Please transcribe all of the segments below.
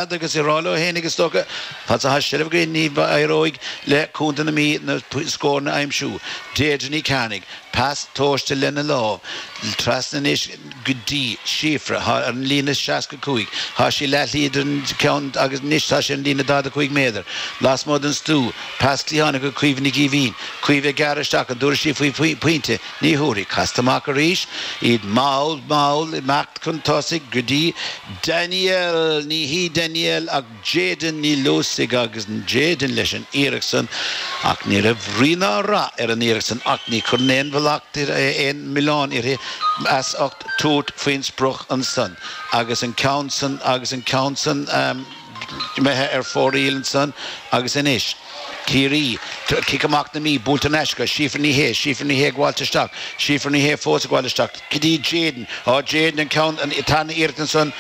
Fhad agus ag rá leo fhéinig, is dócha, fad's atá seilbh againn, ní éireoidh le Contae na Mí na scóranna a aimsiú. Deirdre Ní Chearnaigh, pas tomhaiste lena lámh, trasna anois go dtí Síofra, thall ar an líne 65. Tá sí leathshlí idir an ceann agus anois tá sé ar an líne 45 méadar, lasmuigh den stua. Pas cliathánach chuig Caoimhe Nic Éimhín. Caoimhe ag gearradh isteach an dtabharfaidh sí faoi pointe, ní thabharfaidh. Casta amach arís iad, mall mall, imeacht chun tosaigh go dtí. Danielle, ní hí Danielle ach Jayden Ní Luasaigh agus Jayden leis an iarracht san ach ní raibh rí ná rath ar an iarracht san ach ní chuirfinn aon mhallacht aon mhilleán uirthi as ucht tabhairt faoin sprioc ansan agus an ceann san agus an ceann san imithe ar fóraoil ansan agus anois. Ciarraí, cic amach na Mí buaite thar n-ais ag Síofra Ní Shé, Síofra Ní Shé ag gabháilt isteach, Síofra Ní Shé fós ag gabháil isteach go dtí Jayden, á Jayden an ceann san, iarracht ansan,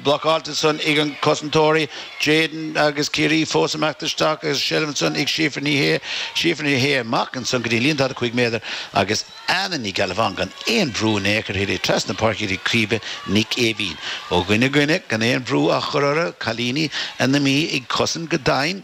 blocáilte ansan ag an cosantóirí, Jayden agus Ciarraí fós ag imeacht isteach agus seilbh ansan ag Síofra Ní Shé, Síofra Ní Shé amach ansan go dtí líne daichead a cúig méadar agus. Anna Ní Ghealbháin gan aon bhrú in aon chor uirthi, trasna na páirce go dtí Caoimhe Nic Éimhín ó dhuine go duine gan aon bhrú á chur orthu, cailíní na Mí ag cosaint go doimhin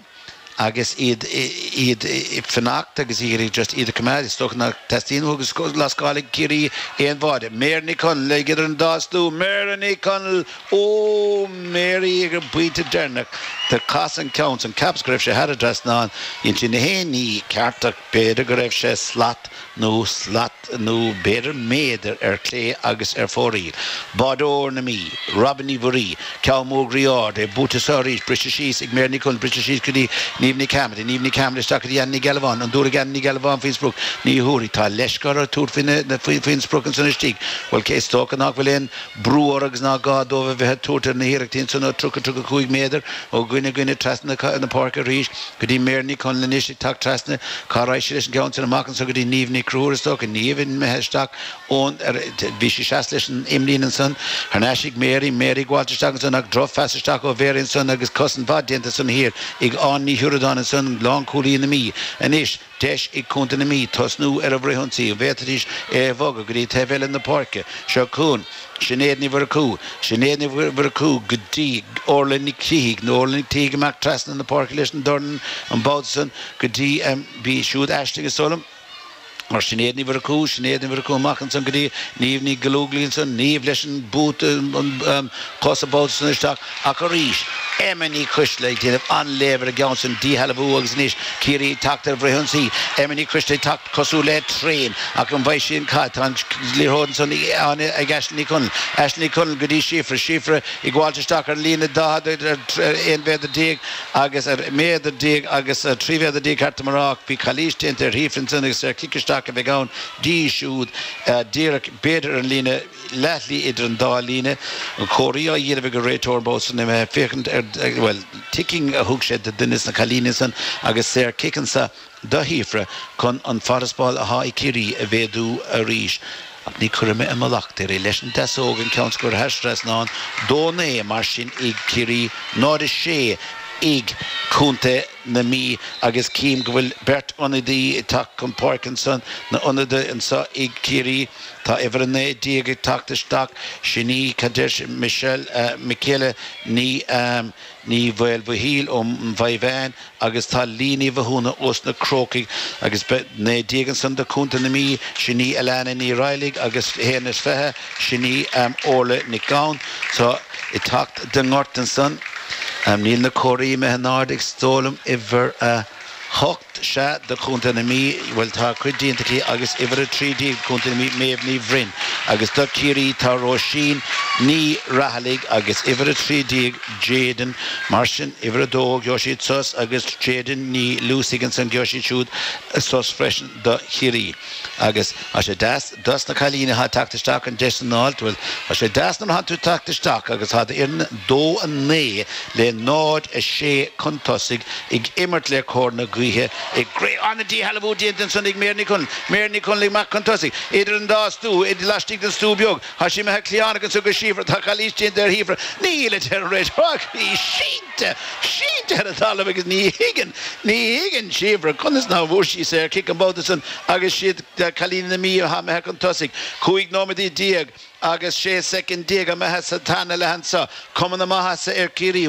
agus iad iad ag fanacht agus iad ag just iad a choimeád, is dócha nach dteastaíonn uathu go lascálfaidh Ciarraí aon bháide. Mary Ní Chonaill ag idir an dá stua, Mary Ní Chonaill, Óóó Mary ag an bpointe deireanach, do casadh an ceann san, cheapas go raibh sé thar an dtrasnán, dhein sí na haon ní ceart, B'fhéidir go raibh sé slat nó slat nó b'fhéidir méadar ar clé agus ar fóraoil. Báideoir na Mí, Robyn Ní Mhuirí, ceann mór groí ard é, buaite anso arís, briseadh síos ag Mary Ní Chonaill, briseadh síos go dtí Niamh Ní Chearmada, Niamh Ní Chearmada isteach go dtí Anna Ní Ghealbháin, an dtabharfaidh Anna Ní Ghealbháin faoin sprioc, ní thabharfaidh, Tá leisce orthu tabhairt faoin sprioc ansan istigh, Bhuel cé is dócha nach bhfuil aon bhrú orthu agus ná gá dóibh a bheith ag tabhairt ar na hiarrachtaí ansan ó 30, 35 méadar ó dhuine go duine trasna na páirce arís go dtí Mary Ní Chonaill anois ag teacht trasna cá raghaidh sí leis an gceann san amach anso go dtí Niamh Ní Chonchúir is dócha Niamh imithe isteach ón áit a bhí sí seasta leis an imlíne ansan thar n-ais ag Mary, Mary ag gabháilt isteach ansan ach drochphas isteach ó Mary ansan agus cosaint mhaith déanta ansan thiar ag Áine Ní Shioradáin ansan lánchúlaí na Mí anois Deis ag Contae na Mí tosnú ar a bhfrithionsaí an bhféadfaidís é a bhogadh go dtí taobh eile na páirce. Seo chugainn Sinéad Ní Mhurchú. Sinéad Ní Mhurchú go dtí Orla Nic Shíthigh, nó Orla Nic Shíthigh amach trasna na páirce leis an dorn an babhta san go dtí Bhí siúd Aisling a Solom mar Shinéad Ní Mhurchú, Sinéad Ní Mhurchú amach ansan go dtí Niamh Ní Ghallogly ansan, Niamh leis an bpas coise an babhta san isteach. Ach arís, Emma Ní Choistealbha ag déanamh an-léamh ar an gceann san, díshealbhú agus anois Ciarraí ag teacht ar an bhfrithionsaí. Emma Ní Choistealbha ag teacht cosúil le traein, ach an bhfaighidh sí an cath? Tá an liathróid ansan ag Áine, ag Aisling Ní Chonaill. Aisling Ní Chonaill go dtí Síofra. Síofra ag gabháilt isteach ar an líne 40, ar 11 mhéadar agus ar mhéadar déag agus ar trí mhéadar déag ceart dom a rá ach bhí calaois déanta ar Shíofra ansan agus saor cic isteach a bheidh ann di siúd díreach b'fhéidir ar an líne leathshlí idir an dá líne, comharthaí á dhéanamh ag an réiteoir thá sé imithe ag féachaint ar, bhuel, ticking a thug sé do duine des na cailíní san agus saor cic anseo do Shíofra chun an farasbarr athá ag Ciarraí a mhéadú arís. Ach ní chuirfidh mé aon mhallacht uirthi. Leis an deasóg an ceann so curtha thar trasnán, 2-9 mar sin ag Ciarraí, 0-6 ag Contae na Mí agus cím go bhfuil beirt ionadaí ag teacht chun páirce ansan, na ionadaithe anseo ag Ciarraí. Tá uimhir 19 ag teacht isteach, sin í Kaddish Mik Mikaela Ní Ní Mhaoilmhichíl ó Mhaigh Mheáin agus tá Leah Ní Mhathúna ós na Crócaigh agus beidh 19 ansan do Contae na Mí, sin í Alanna Ní Raghallaigh agus 21 is sin í Órla Nic Gabhann athá ag teacht don ngort ansan. Níl na comharthaí imithe in airde is dóigh liom uimhir 8. Sea, do Chontae na Mí, bhuel, tá a cuid déanta aici agus uimhir a trí déag, Contae na Mí, Méabh Ní Bhroin, agus do Ciarraí, tá Róisín Ní Rathallaigh agus uimhir a trí déag, Jadyn, mar sin, uimhir a dó, gheobhaidh siad sos, agus Jadyn Ní Luasaigh ansan, gheobhaidh siad siúd sos freisin do Chiarraí. Agus thá sé deas dos na cailíní athá ag teacht isteach an deis san a fháil, bhuel, thá sé deas nuair athá tú ag teacht isteach agus thá d'fhoireann dó a naoi le náid a sé cun tosaigh ag imirt le cóir na gaoithe ach arís an-díshealbhú déanta ansan ag Mary Ní Mary Ní Chonaill amach cun tosaigh idir an dá stua, idir laistigh den stua beag. Thá sé imithe cliathánach anso go Síofra. Tá calaois déanta ar Shíofra. Níl, a deir an réiteoir ach í sínte, sínte ar an talamh agus ní thuigeann, ní thuigeann Síofra conas ná bhfuair sí saor cic an babhta san agus is iad cailíní na Mí athá imithe chun tosaigh, cúig nóiméad déag agus sé soicind déag imithe sa tarna leath anso, cuma na maitheasa ar Ciarraí.